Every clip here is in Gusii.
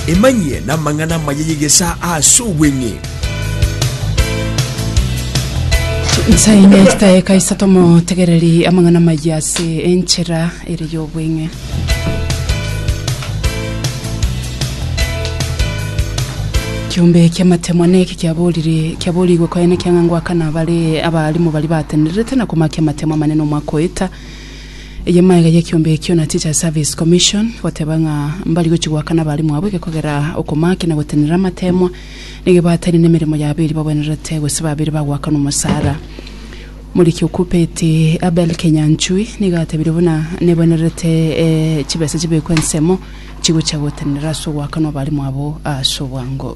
Emanyie namang'ana amaya y'egesaa ase obweng'e. Nsa ime chitaeka isato motegereri amang'ana amaya ase enchera ere y'obweng'e. Kiombe ki'amatemwa neki kiaborire kiaborigwe koenekio ng'a ngoakana bare abarimu baria batenererete na komakia amatemo amanene omwaka oeta Eye maega y'ekiombe ekio na Teachers Service Commission goteba ng'a mbari gochi goakana abalimu abo egekogera okomaki na gotenenera amateemwa negebaataini nemeremo yabo eria babwenerete gose babeire bagoakana omosara. Moriki okopeti Abel Kenyanchui nigo atebire buna nebwenerete eh, chibesa chibekwe ensemo chigochia gotenenera ase ogoakana abalimu abo ase obwango.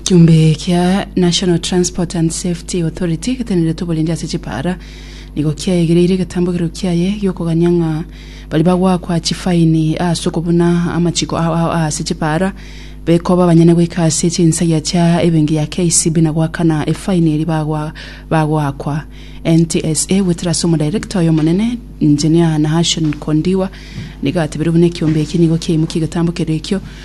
Ekiombe kia National Transport and Safety Authority geteneretwe oborindi ase chipaara nigo kiaegereire egetambogero kiaye giokogania ng'a baria bagoakwa chifaini ase okobuna amachiko ao ao ase chipaara bekoba abanyene goika ase chinsagia chia ebenki ya KCB na goakana efaini eria bagwa bagoakwa NTSA goetera ase omodirector oyo omonene Engineer Nahashon Kondiwa nigo atebirie buna ekiombe eki nigo kiaimokia egetambo keria ekio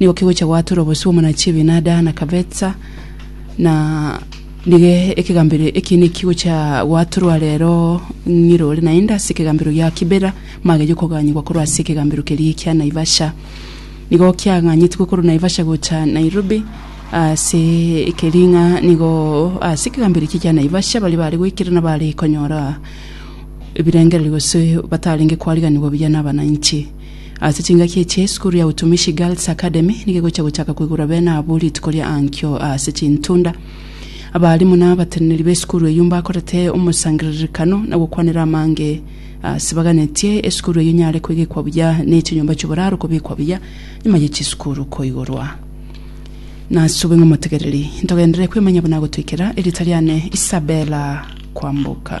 Nigo kegochia goatora obosio bw'omonachi Abinada na kabetsa, na nigo ekegambero eki nekigochia goatorwa rero ng'ire ore naende ase ekegambero gia Kibera, magerie koganyigwa korwa ase ekegambero keria kia Naivasha. Nigo kiaganyetigwe korwa Naivasha gocha Nairobi, ase ekeria ng'a nigo ase ekegambero eki kia Naivasha baria bare goikera na bare konyora ebirengererio gose batarenge kwariganigwa buya na abananchi. Ase chingaki echi, esukuru ya Utumishi Girls Academy nigo egocha gochaka koigora bene abwo rituko ria ankio ase chintunda. Abalimu na abateneneri b'esukuru eyio mbakorete omosangererekano na gokwanera amange ase baganetie esukuru eyio nyare koegekwa buya ne chinyomba chi'oboraro kobekwa buya nyuma ye chisukuru koigorwa. Nasube ng'a omotegereri, ntogenderere kwemanya buna agotoikera. Erieta riane Isabella Kwamboka.